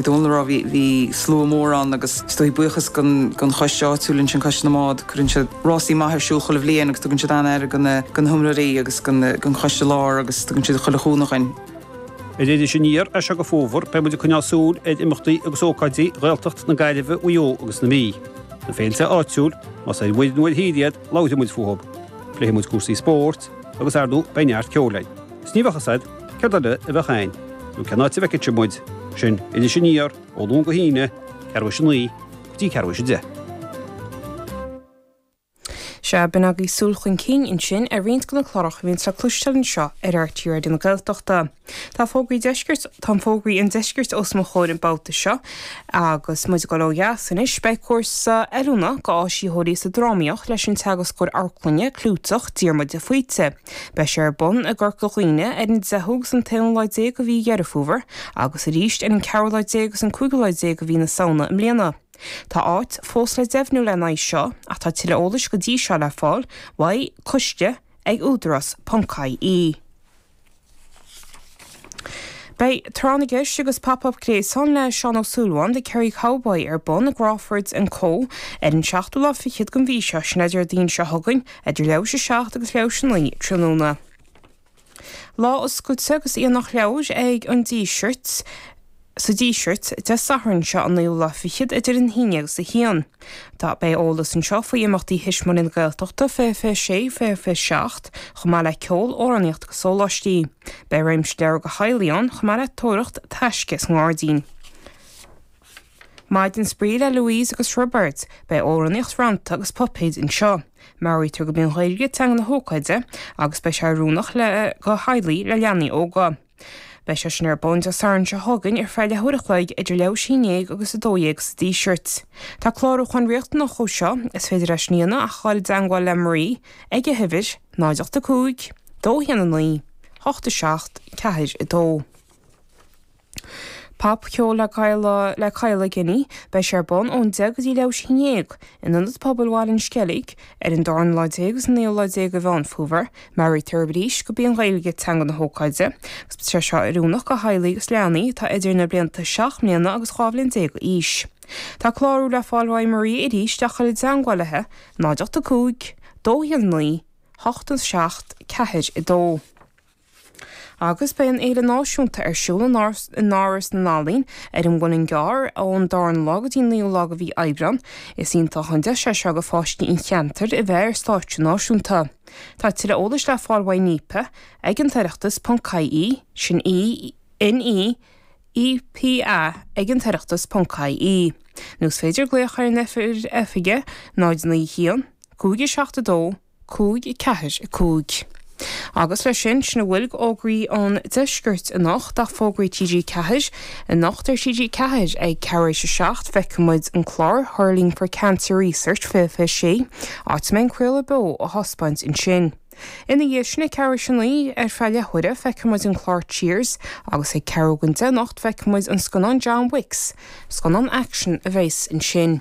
Ní féidir a rá ach bhí slua mór ann agus is dóigh buíochas don choiste áitiúil ansin, Coiste na mBád. Cuireann siad rásaí maithe ar siúl chuile bhliain agus tugann siad an-aire do na himreoirí agus don choiste láir agus tugann siad chuile chúnamh dhúinn. Ar Iris Aniar as seo go fómhar beidh muid ag coinneáil súil ar imeachtaí agus ócáidí Ghaeltacht na Gaillimhe, Mhaigh Eo agus na Mí. Na féilte áitiúla, más ar mhuir nó ar thír iad, labhróidh muid fúthu. Pléifidh muid cúrsaí spóirt agus, ar ndóigh, beidh neart ceoil againn. Is ní bheadh fhios a'd céard eile a bheadh a'inn, nó cén áit a bhfeicfeadh sibh muid. Iris Aniar, Ó Luan go hAoine, ceathrú tar éis a naoi go dtí ceathrú tar éis a deich. Sea, b'in agaibh súil chun cinn ansin ar roinnt de na cláracha a bhíonns le cloisteáil anseo ar RTÉ Raidió na Gaeltachta. Tá fógraí deiscirt, tá fógraí an deiscirt os mo chomhair an babhta seo. Agus muid ag dul ó dheas anois, beidh cúrsa oiliúna do áisitheoirí sa drámaíocht leis an teagascóir amharclainne clúiteach Diarmuid de Faoite. Beidh sé ar bun i gCorca Dhuibhne ar an 10ú agus an t-aonú lá déag de mhí Dheireadh Fómhair agus arís ar an gceathrú lá déag agus an cúigiú lá déag de mhí na Samhna i mbliana. Tá áit fós le deimhniú lena aghaidh seo ach tá tuilleadh eolais go dtí seo le fáil ó coiste ag Údarás. ie. Beidh Tráth na gCeist agus Pop Up Gaeltacht le Seán Ó Súilleabháin, The Kerry Cowboy, ar bun i gCrawford and Co. ar an seachtú lá fichead den mhí seo, sin é Déardaoin seo chugainn, idir leathuair tar éis 7 agus leathuair tar éis 9 tráthnóna. Lá oscailte agus aonach leabhar ag An Díseart. Sa Díseart, Dé Sathairn seo an naoú lá fichead idir a haon déag agus a hAon. Tá, beidh eolas anseo faoi imeachtaí Thuismitheoirí na Gaeltachta 2026, 2027, chomh maith le ceol, amhránaíocht agus sóláistí. Beidh réimse leabhar do theaghlaigh ann, chomh maith le tóraíocht taisce sa ngairdín. Maidin Spraoi le Louise agus Roibeard, Beidh amhránaíocht, rannta agus puipéid anseo. Meabhraítear gurb í an Ghaeilge teanga na hócáide agus beidh sé oiriúnach do theaghlaigh le leanaí óga. Beidh sé sin ar bun Dé Sathairn seo chugainn ar feadh leathuair a chloig idir leathuair tar éis a haon déag agus a dó dhéag sa Díseart. Tá clárúchán riachtanach dó seo. Is féidir é sin a dhéanamh ach a ghabháil i dteangmháil le Marie ag a huimhir, 0 8 5 2 1 9 8 7 4 2. Pop Cheol le Kyle le Kyle Guinee. Beidh sé ar bun ón haon déag go dtí leathuair tar éis a haon déag in Ionad Pobail Bhaile an Sceilg ar an dara lá déag agus an naoú lá déag de Mheán Fómhair. Meabhraítear arís gurb í an Ghaeilge teanga na hócáide agus beidh sé seo oiriúnach do theaghlaigh agus leanaí atá idir na blianta 7 mbliana agus 12 bhliain d'aois. Tá clárú le fáil ó Marie arís ach a ghabháil i dteagmháil léi, 0 8 5 2 1 9 8 7 4 2. Agus beidh an Fhéile Náisiúnta ar siúl in Áras na nEalaíon ar an Muileann gCearr ón darna lá go dtí an naoú lá de mhí Aibreáin. Is iontach an deis é seo do pháistí an cheantair a bheith ar stáitse náisiúnta. Tá tuilleadh eolais le fáil uaidh Neepa ag an tOireachtas ponc ie, sin NEEPA ag an tOireachtas ponc ie, nó is féidir glaoch ar an oifig ag 091 572 545. Agus leis sin, sin a bhfuil d'fhógraí ón deisceart anocht ach fógraí TG4, Anocht ar TG4 ag ceathrú tar éis a seacht feicfidh muid an clár Hurling for Cancer Research 2026, áit a mbeidh an craoladh beo á thaispeáint ansin. Ina dhiaidh sin ag ceathrú tar éis a naoi ar feadh leathuaire feicfidh muid an clár Cheers agus ag ceathrú don deich anocht feicfidh muid an scannán John Wicks, scannán aicsin a bheas ansin.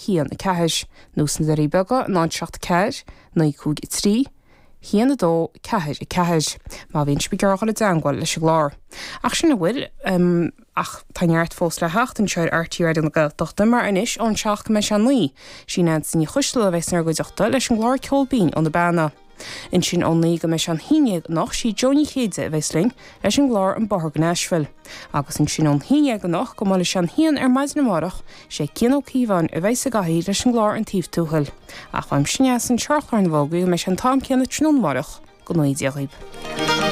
hAon, a ceathair, nó sna Doirí Beaga náid, a seacht, a ceathair, naoi, cúig, a trí, hAon, a dó, ceathair, a ceathair. Má bhíonn sibh ag iarraidh dul i dteangmháil leis an gclár. Ach sin a bhfuil. Ach tá neart fós le theacht anseo ar RTÉ Raidió na Gaeltachta mar anois ón seacht go mbeidh sé a naoi, sí Neansaí Ní Choistealbha a bheas in bhur gcuideachta leis an gclár Ceol Binn ó na Beanna. Ansin ón naoi go mbeidh sé an haon dhéag anocht, sí Jo Ní Chéide a bheas linn leis an gclár An Bóthar go Nashville. Agus ansin ón haon dhéag anocht go mbuailfidh sé an haon ar maidin amárach, sé Cian Ó Cíobháin a bheas sa gcathaoir leis an gclár An Taobh Tuathail. Ach uaimse Neasa anseo ar chlár na bhfógraí go mbeidh sé an t-am céanna tráthnóna amárach go ngnóthaí Dia daoibh.